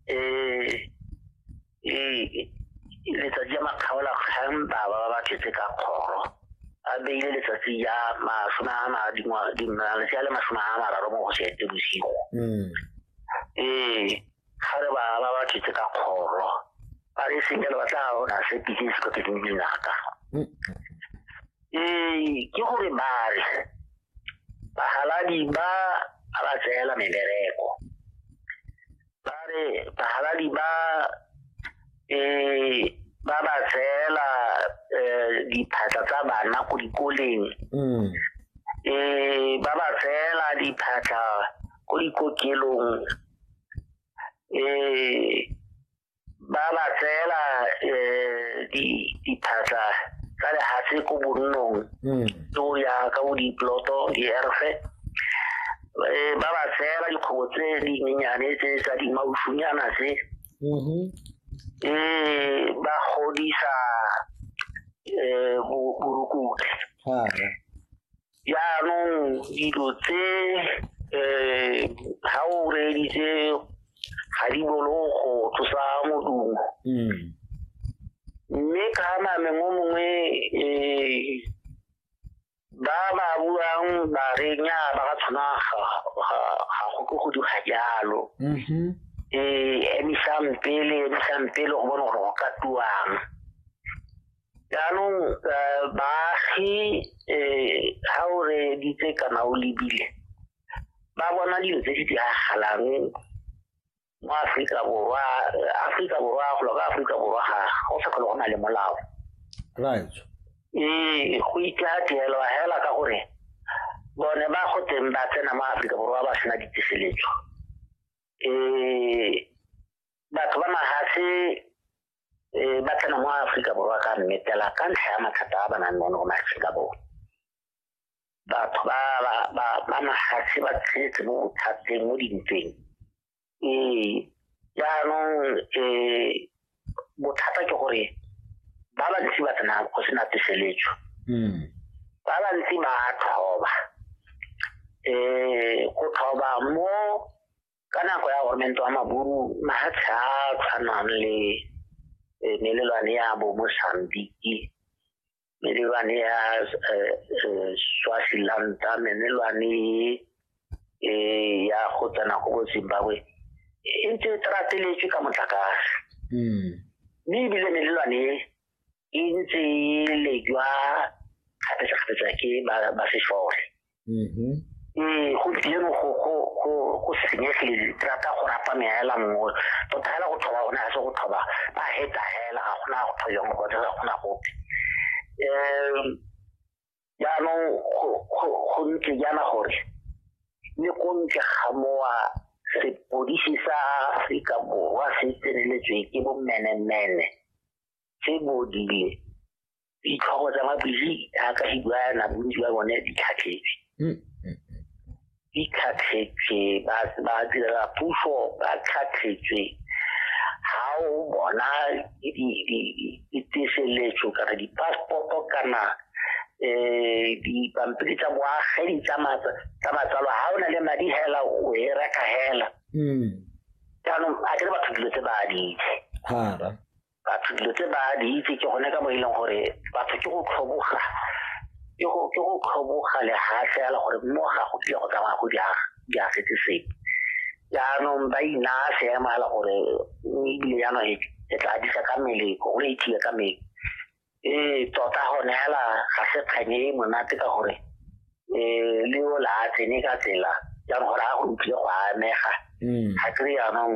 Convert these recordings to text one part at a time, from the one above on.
eh eh letsatsi ya makgaola kgang baba ba ba tletse ka kgoro a beile letsatsi ya masome a malatsi a le masome a mararo mo go seete bosigo mm. ee ga re ba ba ba tletse ka kgoro ba re senyelo ba tla bona se pitse se kote ke dinaka ee ke gore ba re bahaladi ba a ba tseela mebereko ba re bahaladi ba eh ba ba tseela eh, diphatla tsa bana ko dikoleng mm. eh ba ba tseela diphatla ko dikokelong eh ba ba tseela um diphatlha tsa lehatshe ko bonnong hmm. ke o ya ka bo diploto dierfe eh, ba ba tseela dikgobo tse dinyenyane tse tsa dimausunyana tse mm-hmm. eh, ba godisa um borukutlhi jaanong dilo tse um ga o reeditse ga di bolo go tlosa modumo hmm. mme ka name mo mongwe um ba ba buang ba re nya ba ka tshwana ga go ke go diga jalo um mm-hmm. emisang pele emisang pele go bone gore go ka tuang jaanong eh, baagi um ga o reeditse kana o lebile ba bona dilo tse di diragalang mo aforika borwa aforika borwa golo ka aforika borwa ga go sa tlhole go na le molao right ee go itlateelwa fela ka gore bone ba go teng ba tsena mo aforika borwa ba sena ditiseletso um batho ba magase um ba tsena mo aforika borwa ka mmetela ka ntlha ya mathata a ba nang le one go maaforika borwa batho ba mafatshe ba tshetse mo bothateng mo dintweng ee jaanong um bothata ke gore ba bantsi ba tsena go sena tseseletso hmm. ba bantsi ba tlhoba um go tlhoba mo ka nako ya gormento wa maburu mafatshe a tshwanang le e, melelwane ya bo mosambiki melelwane ya e, e, swafilanta melelwane ya go tsena go bo zimbabwe e ntse e trateletswe ka motlakase hmm. mme ebile melelwane e e ntse e lejwa kgapetsa-kgapetsa ke ba sešole mm-hmm. ee gompieno go senyegile thata go rapa meela nngwe tota fela go tlhoba gone ga se go tlhoba ba heta fela ga gona go tlhoyang go ga gona gope um jaanong go ntse jaana gore le ko ntle ga mowa sepodisi sa aforika borwa se tseneletswe ke bommenemene tse bodile ditlhogo tsa mabili a ka hibuana bontsi ba bone di tlhatlhetse hmm. di tlhatlhetse ba ba dira puso ba tlhatlhetse ha o bona di di di di tseseletso kana di passport kana eh di pampiri tsa boagedi tsa matsa tsa matsalo ha ona le madi hela o e reka hela mm jaanong a ke batho dilo tse ba di itse hara batho dilo tse ba di itse ke gone ka mo e leng gore batho ke go tlhoboga ke go ke go tlhoboga lehatlhe ya le gore mo ga go dile go tsamaya go diaga di a setse sepe jaanong ba inaya seemo ya le gore ebile jaanong e, e tla disa ka mmele go e ithiye ka mmele ee tota gone fela ga se kganye e monate ka gore um le o la a tsene ka tsela jaanong gore a go utlwile go amega mm. ga kry jaanong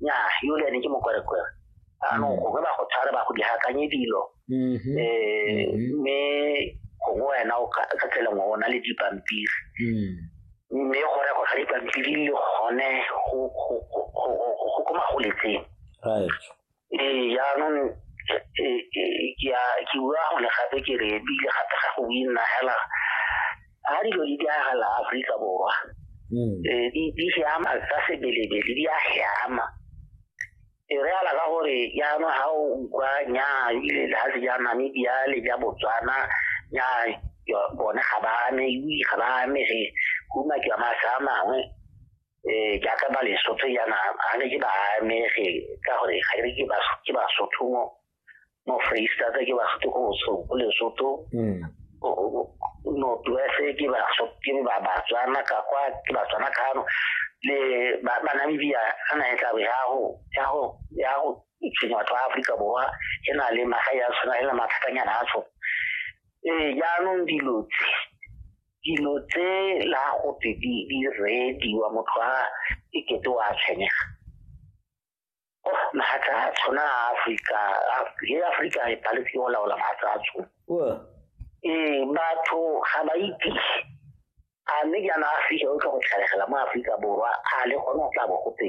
nya yole ene ke mokwerekwere anong mm. gongwe ba go tshware ba go dihakanye dilo um mme gongwe wena o ka tsela ngwe o na le dipampiri mm. mme go rego ga dipampiri le gone go ko magoletseng ee jaanong ke bua gone gape ke re ebile gape ga go winna hela ga dilo di diragala aforika borwa mm. ee, di siama tsa sebelebele di a siama e re ala ka gore jaanong ga o utlwa nyaa ebile le ga se ja namibia le ja botswana nyaa bone ga ba ame ui ga ba amege go umakiwa masa a mangwe um jaaka ba lesotho yana ga ne ke ba amege ka gore ga re ke ke basotho mo mo freestata ke basotho ko bosoko lesotho hmm. northwest ke basotho ke ba batswana ka kwa ke batswana kano le banamibia ga na e tlabe ya go tshwenye batho ba aforika borwa e na le magae a tshwana e na mathatanyana a tshwana ee jaanong dilo tse dilo tse la gote di di rediwa motho a e kete wa tshwenyega oh mahatla a tshwana a afrika le afrika e paletse o laola mahatla a tshwana ee batho ga ba ipise a mme jaana afrika o tla go tlhalegela mo aforika borwa a le gone o tla bo gote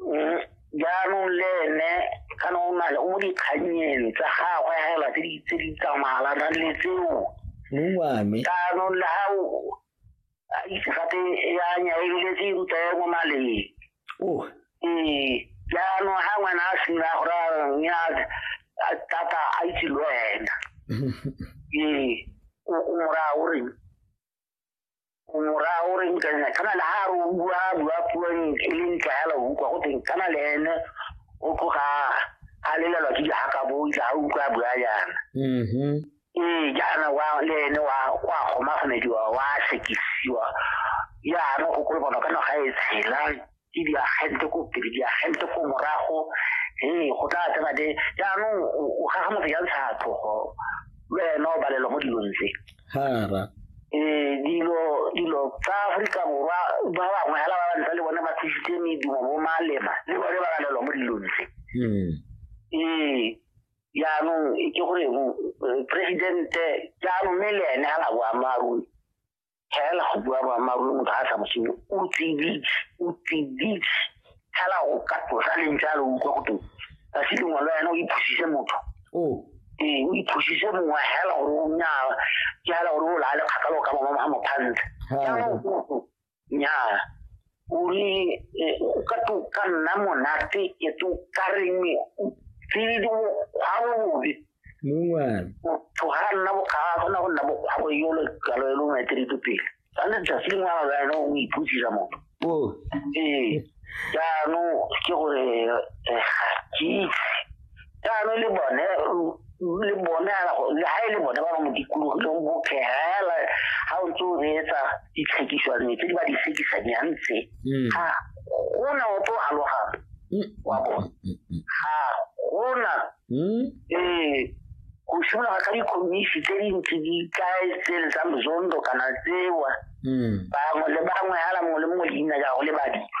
Mm, jaanong le ene kana o na le o mo dikganyeng tsa gagwe fela tse di- tse di tsamalanang le tseo mong wa me jaanong le ga o a itse gape ya nya e bile tse e ruta ya mo maleng oh ee jaanong ga ngwana a sena gore a reng ya a tata a itse le wena ee o o mora o reng mora o re nka nna kana le ha ro bua bua puo e leng tlala o kwa go teng kana le ene o tloga a lelelwa ke ha ka bo itla ha utlwa bua yana mhm ee jaana wa le ene wa kwa goma gomediwa wa sekisiwa ya re go kolobana kana ga e tshela ke diagente ko pele diagente ko morago ee go tla tsena de jaanong o gaga motho ya ntsha tlhogo le wena o balelwa mo dilong tse hara ee dilo dilo tsa aforika borwa ba bangwe hela ba bantsa le bone ba thusitse medumo bo malema le bone ba balelwa mo dilong tse hmm. ee jaanong ke gore eh, presidente jaanong mme le ene ga la boammaaruri tlhaela go bua boammaaruri motho ga a sa mosenyo o tsiditse o tsiditse tlhaela go ka tlosa leng jalo o utlwa go teng ka se lengwe le wena o iphusise motho ee o iphusise mongwe hela gore o nyaa ke hela gore o laale kgakalo ka bangwe ga mophantle jaanong nyaa uri eh, o ka to ka nna monate e to ka reng tsididi ga bobe mongwana motho ga a nna bokga a kgona go nna bokgwa go yolo kalo e lo maetelete pele tshwanetse tsatsi lengwe ga jaana o iputsisa motho o ee jaanong ke gore eh, ga ke itse jaanong le bone le bone le ga e le bone ba ba mo dikologileng bophegela ga o ntse o reetsa ditlhekiswane tse di ba di tlhekisanyang tse mm. ga gona o tlo alogang mm. wa bone mm, ga gona ee go simologa ka dikhomisi tse dintsi di kae tse le tsa mozondo kana tsewa bangwe le bangwe ala mongwe le mongwe leina jago le badilwa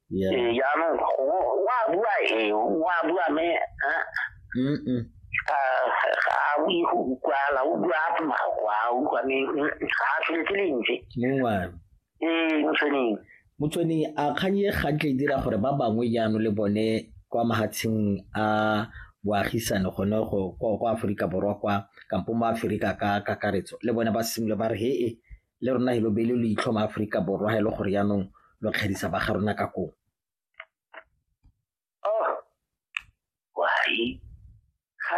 ìyanu wà búwa èyí wà búwa mi awi kwa la ugwa apma kwa ugwa mi kaafiletile nje mongwa ee motsweneng motswene a kgang e ga tle e dira gore ba bangwe jaano le bone kwa mahatsheng a boagisane gone go kwa aforika borwa kwa kampo mo aforika ka kakaretso le bone ba simolo ba re he e le rona helo bele lo itlhoma Aforika Borwa ha e le gore yaanong lo kgedisa ba ga rona ka kong oh, why? Ga